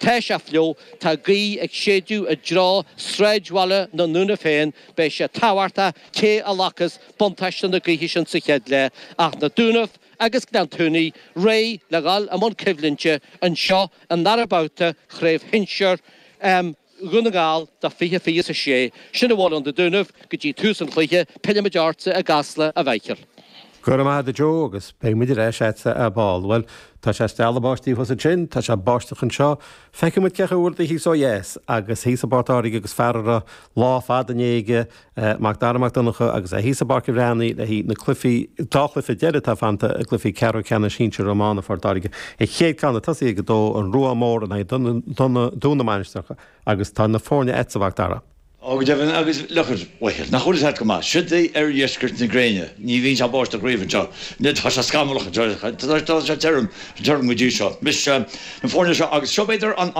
Tá sé fliuch, tá gaoth ag séideadh i dtreo sráidbhaile na nDúnaibh féin, beidh sé tábhachtach cé a ghlacas buntáiste na gaoithe sin sa chéad leath ach na Dúnaibh agus Gleann tSúilí réidh le dhul i mbun coimhlinte anseo i ndara babhta chraobh shinsir Dhún na nGall do 20 20 is a 6. Sin a bhfuil ón na Dúnaibh go dtí tús an chluiche, pillfimid ortsa i gCasla, a Mhichíl. Go raibh maith agat, a Joe, agus beidh muid ar ais a'dsa ar ball. Bhuel, tá sé ag stealladh báistí thuas ansin, tá sé ag báisteach anseo, feicfidh muid cén chaoi a bhfuil rudaí thíos ó dheas, agus thíos i bPort Láirge agus fear a raibh lá fada inné aige, Mac Dara Mac Donncha, agus é thíos i bPáirc an Bhreathnaigh le haghaidh na cluichí, dhá chluiche deiridh atá fanta, i gcluichí ceathrú ceannais shinsir iomána Phort Láirge. An chéad ceann ag tosaí ag a dó, an Ruán Mór in aghaidh Dún na Mainistreach, agus tá na foirne a'dsa, a Mhac Dara. Ó, go deimhin agus a Mhichíl, nach bhfuil a fhios agat go maith? Siod é oirdheisceart na gréine. Ní bhíonn sé ag báisteach riamh anseo. Anois tá sé scamallach anseo. Tá sé tirim, tirim go dtí seo. Anois, na foirne seo agus seo b'fhéidir an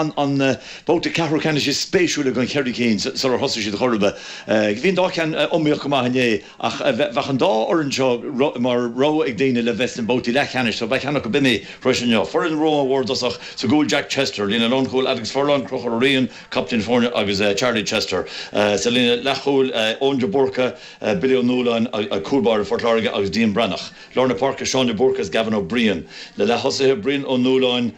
babhta ceathrú ceannais is spéisiúla den cheithre cinn sular thosaigh siad ar chor ar bith bhí an dá cheann iomaíoch go maith inné ach bheadh an dá fhoireann seo mar rogha ag daoine le bheith sna babhtaí leathcheannais so bheadh ceann acu b'in é thar éis inniu. Foireann Ruán Mhór i dtosach sa gcúl Jack Chester, líne lánchúil Alex Furlong, Conchúr Ó Riain, captaen foirne, agus Charlie Chester sa líne leathchúil, Eoin de Búrca, Billy Ó Nualláin, cúl báire Phort Láirge, agus Dean Breathnach. Lár na páirce, Seán de Búrca is Gavin Ó Briain. Na leath-thosaithe, Brian Ó Nualláin,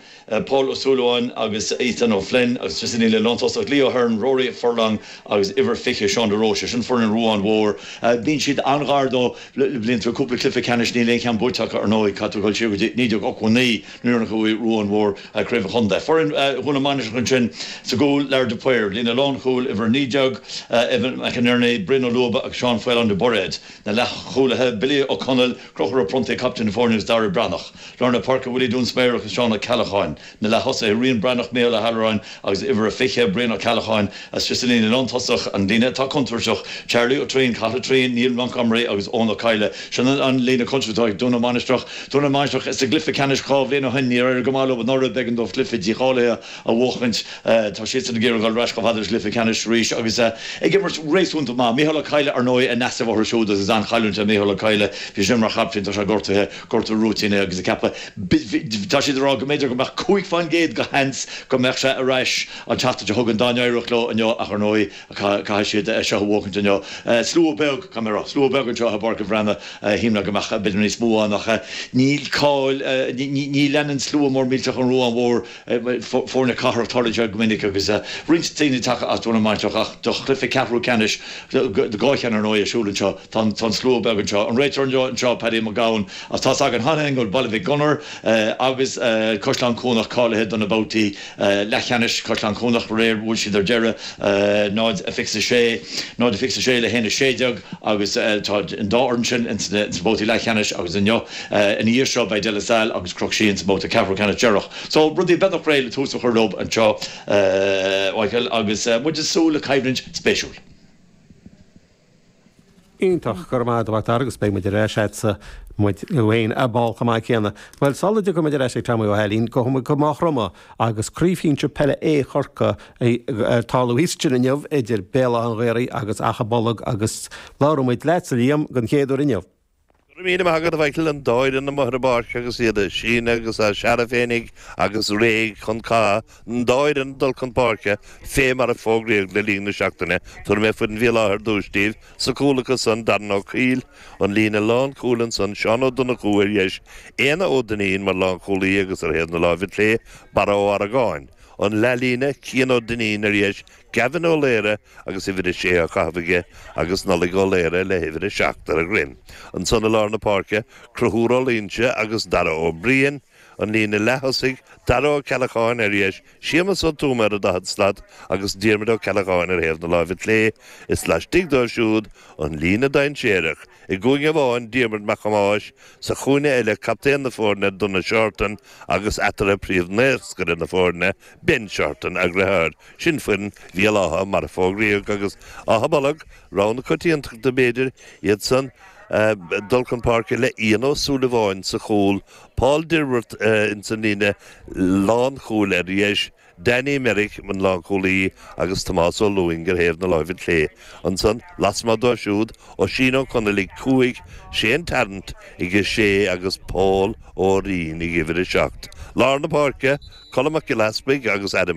Paul Ó Súilleabháin agus Ethan Ó Floinn, agus ansin an líne lántosach, Lee Hearne, Rory Furlong agus uimhir 20, Seán de Róiste. Sin foireann an Ruáin Mhóir. Bíonn siad an-ghar dó le blianta, cúpla cluiche ceannais, níl aon cheann buaite acu, ar ndóigh, caithfidh tú dul siar go dtí 1989, Nuair a bhuaigh Ruán Mhór, Craobh an Chontae, foireann Dhún na Mainistreach ansin sa gcúl, Lar de Paor, líne lánchúil, uimhir 19, Evan McInerney, Brian Ó Luaba agus Seán Faolán de Bairéad, na leathchúlaithe, Billy Ó Conaill, Conchúr Ó Pronntaigh, captaen na foirne agus Dara Breathnach, lár na páirce, Willie Dúinsméarach agus Seán Ó Ceallacháin, na leath-thosaithe, Rian Breathnach, Micheál Ó hAllúráin, Agus uimhir a 20, Brian Ó Ceallacháin, istigh sa líne lántosach an líne atá contúirteach. Charlie Ó Triain, Cathal Ó Triain, Neil Montgomery agus Eoin Ó Cadhla, sin an líne contúirteach atá ag Dún na Mainistreach. Dún na Mainistreach bhí sa gcluiche ceannais dhá bhliain ó shin, níor éirigh go maith leo anuraidh, b'éigean dóibh cluiche dícháilithe a bhuachaint. Tá siadsan ag iarraidh dhul ar ais chomh fada leis an gcluiche ceannais arís agus ag imirt réasúnta maith. Micheál Ó Cadhla, ar ndóigh, in easnamh orthu siúd agus is an-chailliúint é Micheál Ó Cadhla. Bhí sé sin mar chaptaen, tá sé gortaithe. gortú rúitín é agus ag ceapadh tá siad ag rá go mb'fhéidir go mbeadh cúig faoin gcéad de sheans go mbeadh sé ar ais an tseachtain seo chugainn dá n-éireodh leo inniu ach ar ndóigh caithfidh siad é seo a bhuachaint inniu slua beag caithfidh mé a rá slua beag anseo i bPáirc an Bhreathnaigh shíl mé go mbeadh b'fhéidir níos mó ann ach níl cáil ní leanann slua mór millteach an Ruán Mhór foirne cathrach tarraingt go minic agus roinnt daoine tagtha as dúinn an mhaidin seo. Ach do chluiche ceathrú ceannais, dhá cheann ar ndóigh, ar siúl anseo, tá an slua beag anseo. An réiteoir anseo, Paddy McGowan, ach tá's againn cheana féin go bhfuil Baile Mhic Gonair agus Caisleán Cuanach cáilithe do na babhtaí leathcheannais, Caisleán Cuanach aréir, bhuail siad ar deireadh, 0 a 26, 0 a 26 le 1 16, agus tá an dá fhoireann sin ins na babhtaí leathcheannais agus inniu, Ina dhiaidh seo beidh De La Salle agus Cnoc Síon sa mbabhta ceathrú ceannais deireanach. So rudaí beagnach réidh le tús a chur leo anseo, Mhaidhcil, agus muid ag súil le coimhlint spéisiúil. Iontach, go raibh maith agat, Dar agus beidh muid ar ais leatsa, muid féin ar ball chomh maith céanna. Bhuel, sula dtiocfaidh muid ar ais i gceann tamaillín, gabhaimid go Maigh Chromtha agus Craobh Shinsir Peile A Chorcaí ag tarlú thíos ansin inniu idir Béal Átha an Ghaorthaidh agus Achadh Bolg agus labhróimid leatsa, Liam, den chéad uair inniu. Go raibh míle maith agat, a Mhichael, an dá fhoireann amuigh ar an bpáirc agus iad á síneadh agus á searradh féinig agus réidh chun catha, an dá fhoireann ag dul chun páirce, fé mar a fógraíodh le linn na seachtaine, tabharfaidh mé foireann Bhéal Átha ar dtúis díbh, sa gcúl acu san, Darren Ó Coill, an líne lánchúil, ansan Seán Ó Donnchú, ar dheis, Éanna Ó Duinnín mar lánchúlaí agus ar thaobh na láimhe clé, Barra Ó hArgáin, an leathlíne, Cian Ó Duinnín, ar dheis, Gavin Ó Laoghaire, agus uimhir a sé á chaitheamh aige agus Nollaig Ó Laoire le huimhir a seacht ar a dhroim. Ansan i lár na páirce, Conchúr Ó Loingsigh agus Dara Ó Briain, an líne leath-thosaigh, Dara Ó Ceallacháin, ar dheis, Séamus Ó Tuama ar an daichead slat agus Diarmuid Ó Ceallacháin ar thaobh na láimhe clé, is laistigh dóibh siúd, an líne dainséarach, i gcúinne amháin, Diarmuid Mac Thomáis, sa chúinne eile, captaen na foirne, Donagh Seartan, agus eatarthu, príomh-naoscaire na foirne, Ben Seartan, eagraitheoir, sin foireann Bhéal Átha, mar a fógraíodh, agus Achadh Bolg, rogha na coitiantachta b'fhéidir, iad san dul chun páirce le Ian Ó Súilleabháin sa chúl, Paul Dilworth ins an líne lánchúil ar dheis, Danny Merrick an lánchúlaí agus Tomás Ó Lúing ar thaobh na láimhe clé. Ansan lasmuigh dóibh siúd, Oisín Ó Conaill ag cúig, Shane Tarrant ag a sé agus Paul. Ó Rinn ag uimhir a seacht. Lár na páirce, Colm Mac Giolla Easpaig agus Adam.